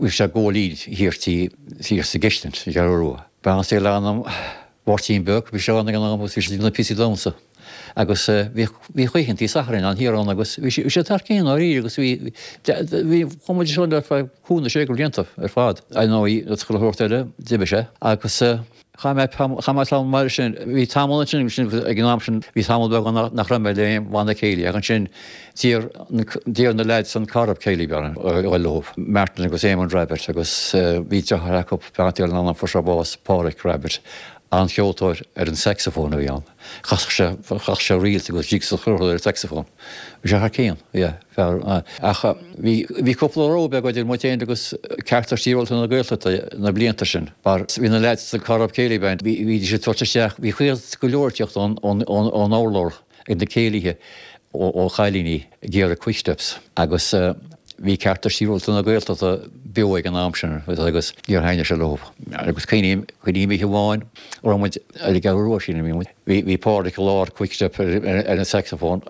Bhí sé i gcónaí thiar thiar sa gCistin ar an gCeathrú Rua. Beannacht Dé le hanam Mháirtín Beag, bhí sé ann ag an am agus bhí sé ag déanamh píosaí damhsa agus bhí oícheantaí Sathairn ann thiar ann agus bhí sé thar cionn dháiríre agus bhí chuaigh muid ansin ar feadh cúig nó sé de bhlianta ar fad. Ar ndóigh, cosúil le chuile shórt eile d'imigh sé agus Chaith mé tamall, chaith mé tamall mar sin, bhí tamall ansin, ansin ag an am sin, bhí tamall beag ann nach raibh mé le aon bhanna céilí ach ansin d'iarr, d'iarr na lads an Corrib Céilí Band orm, a dhul leo, Martin agus Éamonn Rabbitte agus bhí deartháir acu, beannacht Dé lena anam, fuair sé bás, Páraic Rabbitte, an-cheoltóir ar an saxophone a bhí ann, chasadh sé, chasadh sé reels agus jigs is chuile shórt ar an saxophone. Bhí sé thar cionn, yeah. Fearr, ach bhí cúpla row beag idir muid féin agus Cearta Sibhialta na Gaeltachta na blianta sin, mar bhí na leaids sa Corrib Céilí Band, bhídís ag tabhairt isteach, bhí chuile go leor ag teacht ón urlár ag na céilíthe ó chailíní ag iarraidh quicksteps agus bhí Cearta Sibhialta na Gaeltachta beo ag an am sin agus níor thaitnigh sé leo. Agus cuimhním oíche amháin, raibh muid ar an gCeathrú Rua sílim, a bhí muid, Bhí Páraic i lár Quickstep ar an sacsafón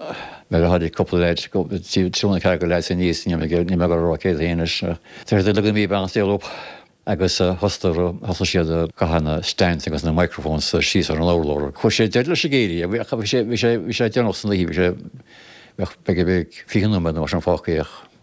nuair a tháinig cúpla leid triúr nó ceathrar de leaids aníos, níl mé ag rá cé hiad féin anois, deir siad, leagan mí beann saol up agus thosaigh siad ag caitheamh na stands agus na microphones síos ar an urlár. Chuir sé deireadh leis an gcéilí ach bhí sé deireanach san oíche, bhí sé, b'fhéidir nach raibh ach fiche nóiméad nó mar sin fágtha é ach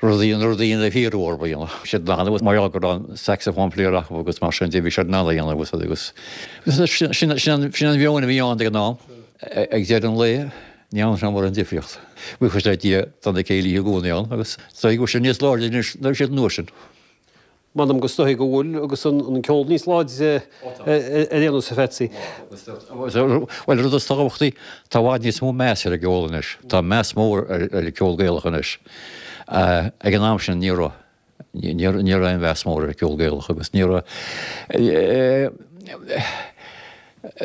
Rudaí na rudaí a hiarradh orthu a dhéanamh. Bhí siad in ann agus mar gheall go raibh an saxophone player acu agus mar sin de bhí siad in ann a dhéanamh tá a fhios agat agus sin sin sin an meon a bhí ann ag an am. Ag deireadh an lae ní dhearna sé mórán difríocht. Buíochas le Dia d'fhan na céilithe i gcónaí ann agus b'fhéidir níos láidre anois ná a bhí siad an uair sin. M'anam gur dóichí go bhfuil agus an ceol níos láidre ar aon nós, a Pheatsaí. Bhuel, rud is tábhachtaí, tá i bhfad níos mó meas ar an gceol anois. Tá meas mór ar an gceol Gaelach anois. Ag an am sin, ní raibh. Ní raibh aon mheas mór ar an gceol Gaelach agus ní raibh.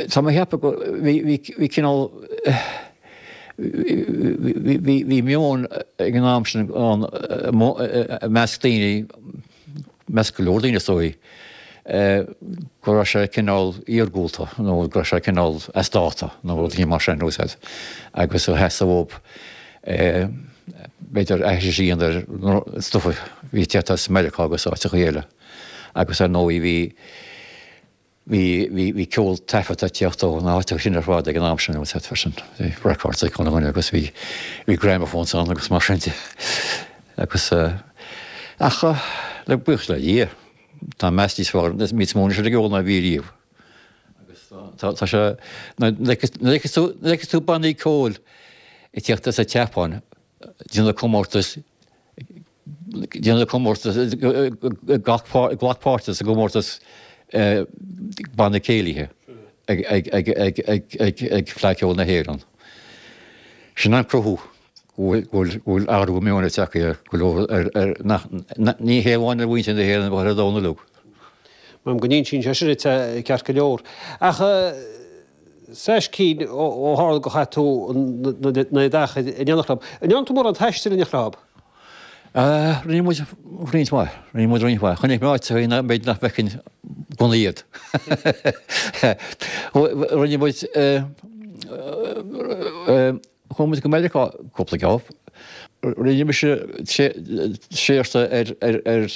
Tá mé ag ceapadh go, bhí, bhí, bhí cineál, bhí, bhí, bhí meon ag an am sin ann i measc daoine, i measc go leor daoine is dóigh, go raibh sé cineál iargúlta nó go raibh sé cineál as dáta nó rud éigin mar sin, tá a fhios agat, agus theastaigh uathu, b'fhéidir aithris a dhéanamh ar stuif a bhí ag teacht as Meiriceá agus áiteachaí eile agus ar ndóigh bhí, Bhí ceol taifeadta ag teacht ó na háiteacha sin ar fad ag an am sin, agus téip freisin ar records ag Conán Maol, agus bhí gramophones ann agus mar sin de. Agus, ach, le buíochas le Dia, tá meas níos fearr, níos mó anois ar an gceol ná a bhí riamh. Agus tá, tá sé, nuair a fheiceann tú, nuair a fheiceann tú bannaí ceoil ag teacht as an tSeapáin, ag déanamh comórtas, Glac páirt sa gcomórtas Banna Céilithe ag Fleadh Cheoil na hÉireann. Sin an cruthú go bhfuil athrú meoin ag teacht ar go leor, ní hé amháin ar mhuintir na hÉireann ach ar an domhan uilig. Maím go n-insíonn sé sin ceart go leor ach. Seacht gcinn ó tharla gur chaith tú an oiread achair in éineacht leo. An ndearna tú mórán taistil in éineacht leo? Rinne muid roinnt mhaith, rinne muid roinnt mhaith. Chonaic mé áiteachaí b'fhéidir nach bhfeicfinn gan iad. Rinne muid. Chuaigh muid go Meiriceá cúpla geábh. Rinne mise seachtain ar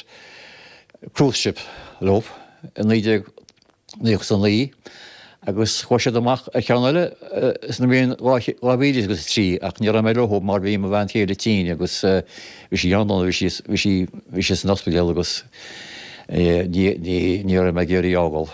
cruise ship leo i 1999 agus chuaigh siad amach ar cheann eile sa mbliain 2003 ach ní raibh mé leo mar bhí mo bhean chéile tinn agus bhí sí an-dona, bhí sí, bhí sí, bhí sí san ospidéal agus ní raibh mé ag iarraidh í a fhágáil.